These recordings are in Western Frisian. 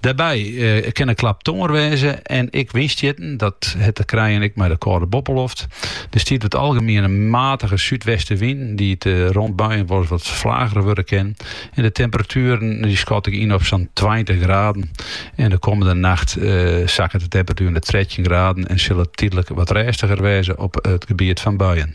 Dêrby kin in klap tongear wêze en ek wynstjitten, dat hat te krijen ek mei de kâlde boppeloft. Der stiet oer it algemien in matige súdwestenwyn, dy't rond buien wolris wat flager wurde kin. En de temperatueren dy skat ik yn op sa'n tweintich graden. En de kommende nacht sakket de temperatuer nei trettjin graden en sil it tydlik wat rêstiger wêze op it gebiet fan buien.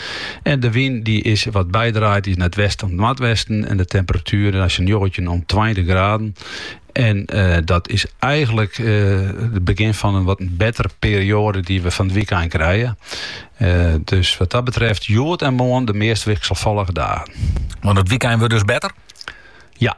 En de wyn dy is wat bydraaid is nei it westen oant noardwesten. En de temperatueren sa'n njoggentjin oant tweintich graden. En eh, dat is eigenlik eh, it begjin fan in wat bettere perioade dy't we fan it wykein krije. Eh, dus wat dat betreft, hjoed en moarn de meast wikselfallige dagen. Want it wykein wurdt dus better? Ja,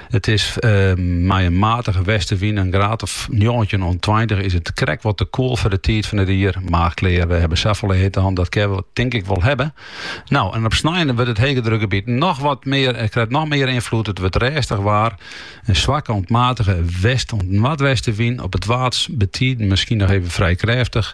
It is mei in matige westewyn, in graad of njoggentjin oant tweintich, is it krekt wat te koel foar de tiid fan it jier. Mar klear, we hawwe safolle hitte hân, dat kinne we tink ik wol hawwe. No, en op snein dan wurdt it hegedrukgebiet noch wat mear, krijt noch mear ynfloed. It wurdt rêstich waar. In swakke oant matige west oant noardwestewyn, op it Waad betiden miskien noch even frij krêftich.